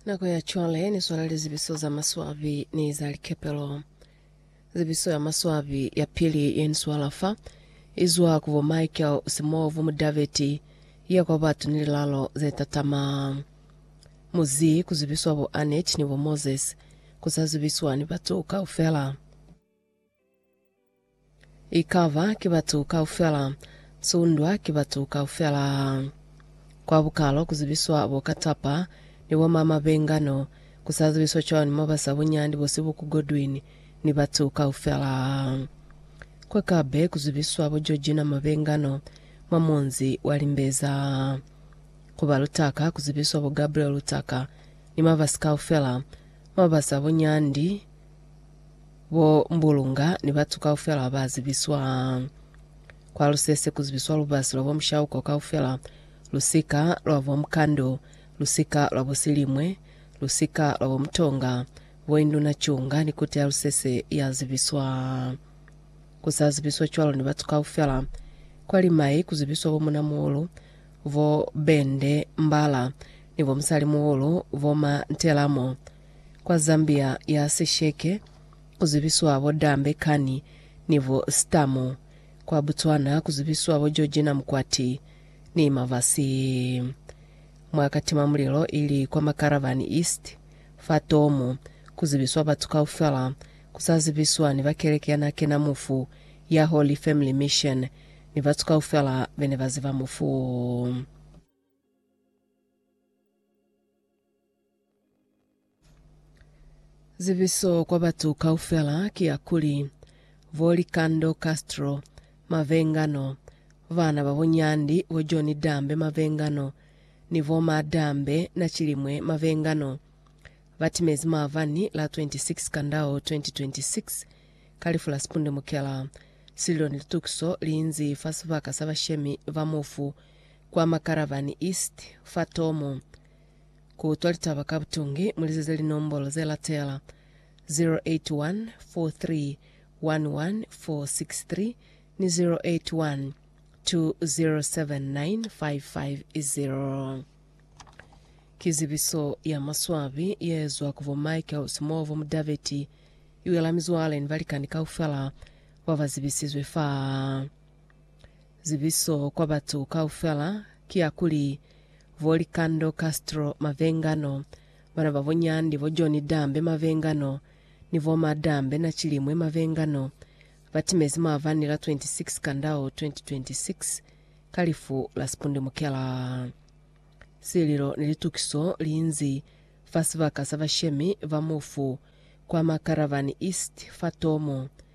Nako ya cwale ni swala lizibiso za maswabi ni za likepelo. Zibiso ya maswabi ya pili ye ni swala fa, izwa ku bo Michael Simovu Mudaveti, ya kwa batu ni lilalo ze tatama. Mu zi ku zibiswa bo Annette ni bo Moses, ku sa zibiswa ni batu kaufela. Ikaba ki batu kaufela, sundwa ki batu kaufela. Kwa bukalo kuzibiswa bo katapa ni bo mama bengano, kusazibiswa cwani mo basa bunyandi bo sibuku Godwin ni batu kaufela? Kwa kabe kuzibiswa bo Georgina ma bengano mwa munzi wa Limbeza. Ku ba Lutaka kuzibiswa bo Gabriel Lutaka ni mabasi kaufela mo basa bunyandi, Bo Mbulunga ni batu kaufela baba zibiswa kwa lusese ku zibiswa lubasi lwa bo mushauko kaufela, lusika lwa bo mukando, lusika lwa bo silimwe, lusika lwa bo mutonga, bo induna cunga ni kota ya lusese ya zibiswa. Ku sa zibiswa cwalo ni batu kaufela, kwa limai ku zibiswa bo muna muulu, bo bende, mbala, ni bo musali muulu, bo ma ntelamo. kwa Zambia ya sisheke ku zibiswa bo Dambe Kani ni bo Stamu, kwa Botswana ku zibiswa bo Georgina Mukwati ni Mavasi. Mwa katimamulilo ili kwa Makaravani East, fa Tomu, ku zibiswa batu kaufela, ku sa zibiswa ni ba keleke ya n'a kena mufu ya Holy Family Mission ni batu kaufela be ne ba ziba mufu. Zibiso kwa batu kaufela ki ya kuli, bo Likando Castro, Mavengano, bana ba bo Nyandi, bo John Dambe Mavengano, ni bo Ma Dambe Nachilimwe Mavengano, ba timezi maabani la 26 Kandao 2026 ka lifu la sipundumukela, sililo ni litukiso li inzi fa sibaka sa bashemi ba mufu kwa Makarabani East fa Tomo. Kutwa litaba ka butungi mulizize linombolo zelatela, 081 4311463 ni 081 2079550. Ki zibiso ya maswabi yeezwa ku bo Michael Simovo Mudaveti iwela mizwale ni balikani kaufela babazibisizwe fa. Zibiso kwa batu kaufela ki ya kuli, Vo Likando Castro Mavengano, bana ba bo Nyandi, bo John Dambe Mavengano, ni bo Ma Dambe Nachilimwe Mavengano, ba timezi maavani la 26 Kandau 2026 ka lifu la sipundumukela. Sililo ni litukiso liinzi fa sibaka sa bashemi ba mufu kwa Makarabani East fa Tomo.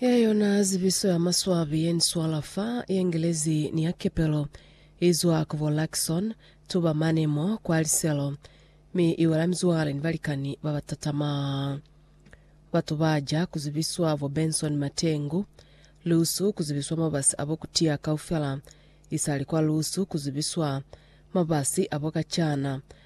Ye yona zibiso ya maswabi ye ni swala fa Yengelezi ni ya kepelo, i zwa ku bo Luckson, tuba mane mo kwa liselo, mi i wela mizwale ni balikani ba ba tatama. Batu ba ja ku zibiswa bo Benson Matengu, lusu ku zibiswa mabasi a bo kutiya kaufela, isali kwa lusu ku zibiswa mabasi a bo kacana,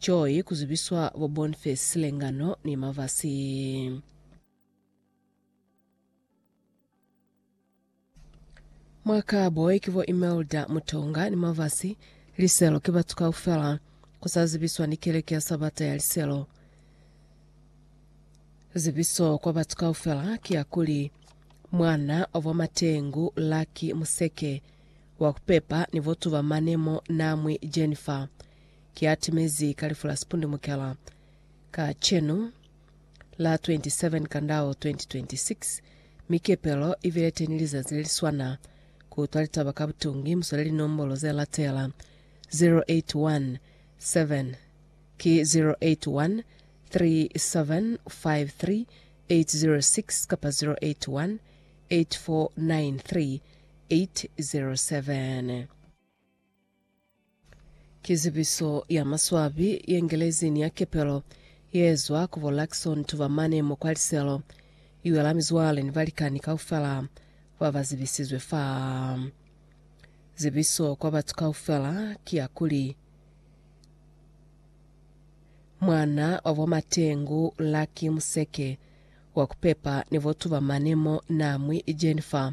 Joy ku zibiswa bo Bonface Silengano ni Mavasi. Mwa Karboy ki bo Imelda Mutonga ni Mavasi. Liselo ki batu kaufela. Ku sa zibiswa ni Keleke ya Sabata ya Liselo. Zibiso kwa batu kaufela ki ya kuli, Mwana wa bo Matengu, Lucky Museke, wa ku pepa ni bo tuba mane mo, Namwi Jennifer. Ki atimezi ka lifu la sipundumukela kacenu la 27 Kandao 2026, mi kepelo i bile teni lizazi le li swana. Ku utwa litaba ka butungi, mu swele linombolo ze latela, 0817 ki 0813753806 kapa 0818493807. Ki zibiso ya maswabi ye Ngelezi ni ya kepelo ye zwa ku bo Luxon tuba mane mo kwa liselo. I wela mizwale ni balikani kaufela ba ba zibisizwe fa. Zibiso kwa batu kaufela ki ya kuli, Mwana wa bo Matengu Lucky Museke wa ku pepa ni bo tuba mane mo na mwi Jennifer.